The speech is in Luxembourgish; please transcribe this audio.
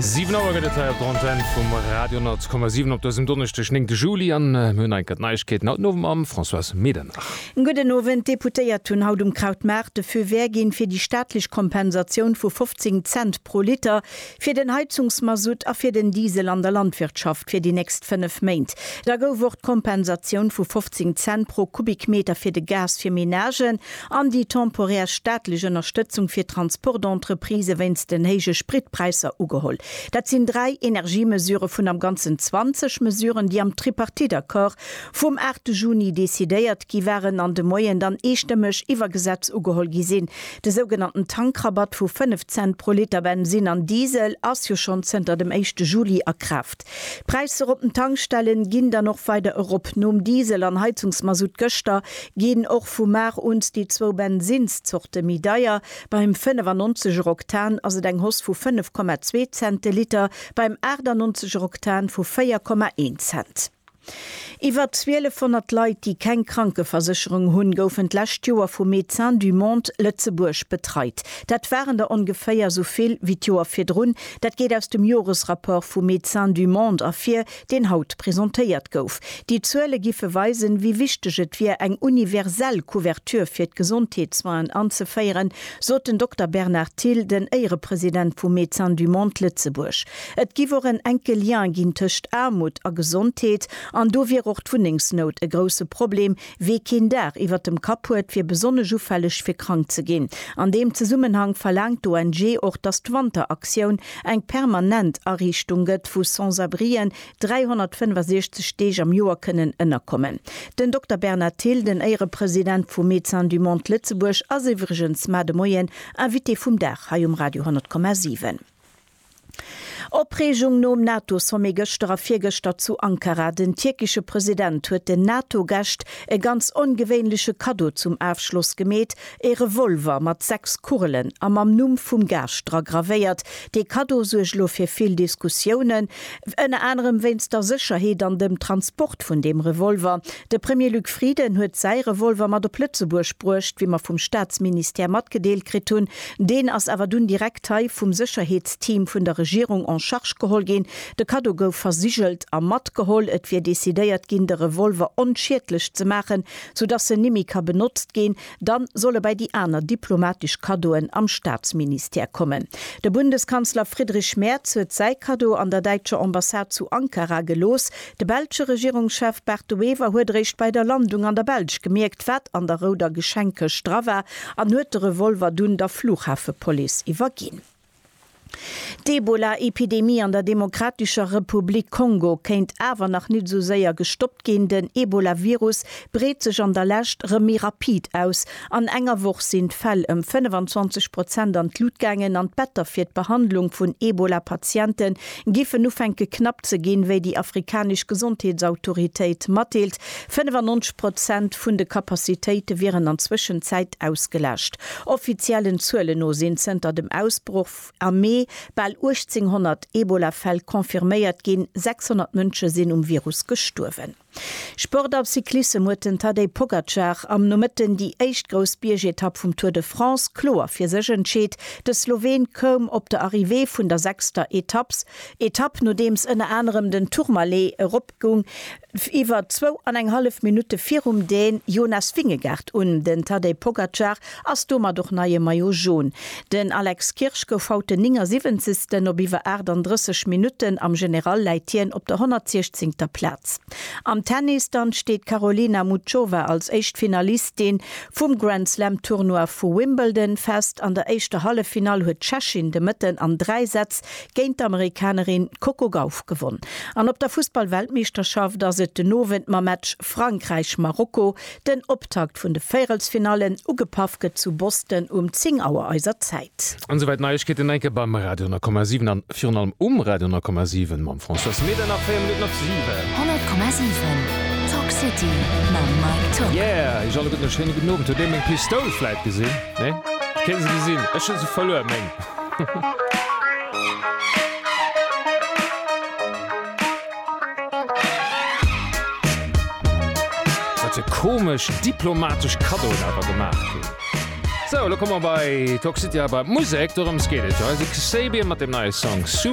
Siwen Auer gëtt et hei op der Antenn vum Radio 10,7 op dësem Donneschdeg, 9 Juli, an mir hunn eng Kéier d'Neiegkeeten haut den Owend mam Françoise Medernach. Gudden Owend. D'Deputéiert hunn haut um Krautmaart de Feu vert ginn, fir déi staatlech Kompensatioun vu 15 Cent pro Liter fir den Heizungsmasutt a fir den Diesel an der Landwirtschaft fir déi nächst fënnef Méint. Da gouf och d'Kompensatioun vu 15 Cent pro Kubikmeter fir de Gas fir Menagen An déi temporär staatlech Ënnerstëtzung fir d'Transportentreprisen wéinst den héije Spritpräisser ugeholl. Dat sinn dräi Energiemesure vun am Ganzen 20 Mesuren, déi am Tripartite-Accord vum 8 Juni decidéiert gi waren an de Moien dann eestëmmeg iwwer Gesetz ugeholl gi sinn. De sougenannten Tankrabatt vu 5 Cent pro Liter Bensin an Diesel ass jo schonn zënter dem éischte Juli a Kraaft. D'Präisser op den Tankstellen ginn dann och weider erop. Nom Diesel an Heizungsmasutt gëschter ginn och vu mar un déi zwou Bensinnszorte méi deier. Beim 95 er Oktan ass et eng Hoss vu 5,2 Cent de Liter, beim 98 er Oktan vu 4,1 Cent. Iwwer 1200 Leit, déi keng Krankeversécherung hunn, goufen d'lescht Joer vu Médecins du Monde Lëtzebuerg betreit. Dat waren der ongeféier sou vill wéi d'Joer virdrun. Dat geet aus dem Joresrapport vu Médecins du Monde ervir, deen haut presentéiert gouf. Déi Zuele giffe weisen, wéi wichteg et wier, eng universell Couverture fir d'Gesondheetssoinen anzeféieren, sot den Dokter Bernard Thill, den Éierepresident vu Médecins du Monde Lëtzebuerg. Et giff och en enke Lien ginn tëscht Aarmut a Gesondheet, an do wier och d'Wunnengsnout e grousse Problem, wee keen Daach iwwert dem Kapp huet, wier besonnesch ufälleg fir krank ze ginn. An deem Zesummenhang verlaangt d'ONG och, datt d'Wanteraktioun eng permanent Ariichtung gëtt, wou Sans-abrien 365 Deeg am Joer kënnen ënnerkommen. Den Dokter Bernard Thill, den Éierepresident vu Médecins du Monde Lëtzebuerg, ass iwwregens mar de Moien Invité vum Dag hei um Radio 10,7. Opreegung nom NATO-Sommet gëschter a virgëschter zu Ankara. Den tierkesche President huet den NATO-Gäscht e ganz ongewéinleche Kaddo zum Afschloss gemeet, ee Revolver mat sechs Kugelen a mam Numm vum Gaascht dra gravéiert. Dee Kaddo suergt elo fir vill Diskussiounen, ënner anerem wéinst der Sécherheet an dem Transport vun deem Revolver. De Premier Luc Frieden huet säi Revolver mat op Lëtzebuerg bruecht, wéi mer vum Staatsministère matgedeelt kritt hunn. Deen ass awer dunn direkt hei vum Sécherheetsteam vun der Regierung en charge geholl ginn. De Kaddo gouf versigelt a matgeholl. Et wier decidéiert ginn, de Revolver onschiedlech ze maachen, soudass en nimmi ka benotzt ginn. Dann soll e bei déi aner diplomatesch Kaddoen am Staatsministère kommen. De Bundeskanzler Friedrich Merz huet säi Kaddo an der däitscher Ambassade zu Ankara gelooss. De belsche Regierungschef Bart De Wever huet eréischt bei der Landung an der Belsch gemierkt, wat an der rouder Geschenkkëscht dra war an huet de Revolver dunn der Flughafepolice iwwerginn. D'Ebola-Epidemie an der Demokratescher Republik Kongo kéint awer nach nit esou séier gestoppt ginn. Den Ebola-Virus breet sech an der Lescht rëm méi rapid aus. An enger Woch sinn d'Fäll ëm 25 Prozent an d'Lut gaangen an d'Better fir d'Behandlung vun Ebola-Patiente giffen ufänke knapp ze ginn, wéi déi afrikanesch Gesondheetsautoritéit matdeelt. 95 Prozent vun de Kapazitéite wieren an Zwëschenzäit ausgelascht. Offiziellen Zuelen no sinn zënter dem Ausbroch am Mee bal 1.800 Ebola-Fäll confirméiert ginn, 600 Mënsche sinn um Virus gestuerwen. Sport a Cyclissem huet den Tadej Pogacar am Nomëtten déi éischt grouss Biergetapp vum Tour de France kloer fir sech entscheet. De Sloween koum op der Arrivée vun der sechster Etapps Etapp, nodeems ënner anerem den Tourmalet erop Goung iwwer zwou an eng hallef Minutte virum den Jonas Vingegaard un. Den Tadej Pogacar ass domat och neie Maillot Jaune. Den Alex Kirsch gouf haut den 79. Op iwwer 38 Minutten am General läit hien op der 116. Plaz. Am Tennis dann steet d'Karolina Muchova als éischt Finalistin vum Grand Slam Tournoi vu Wimbledon fest. An der éischter Halleffinall huet d'Tschechin de Mëtten an dräi Sätz géint d'Amerikanerin Coco Gauff gewonn an op der Fussballweltmeeschterschaft ass et den Owend mam Match Frankräich-Marokko, den Optakt vun de Véierelsfinallen. Ugepaff gëtt zu Boston um 10 Auer eiser Zäit. An souwäit Neiegkeeten enke beim Radio 10,7 an virun allem um Radio 10,7 mam François Smit an nach 4 Minutten op 7. 100,7 Talk City mam Mike Tock. Yeah, iech alleguerten e schéine gudden Owend. Huet ee meng Pistoul vläit gesinn? Nee? Kee se gesinn? Ech hu se verluer, meng. Wat e komesch diplomatesch Kaddo et awer gemaach krut. Sou, elo komme mer bei d'Hoxhtia, bei d'Musek, dorëms geet et jo. Hei si Kasabian mat dem neie Song Super.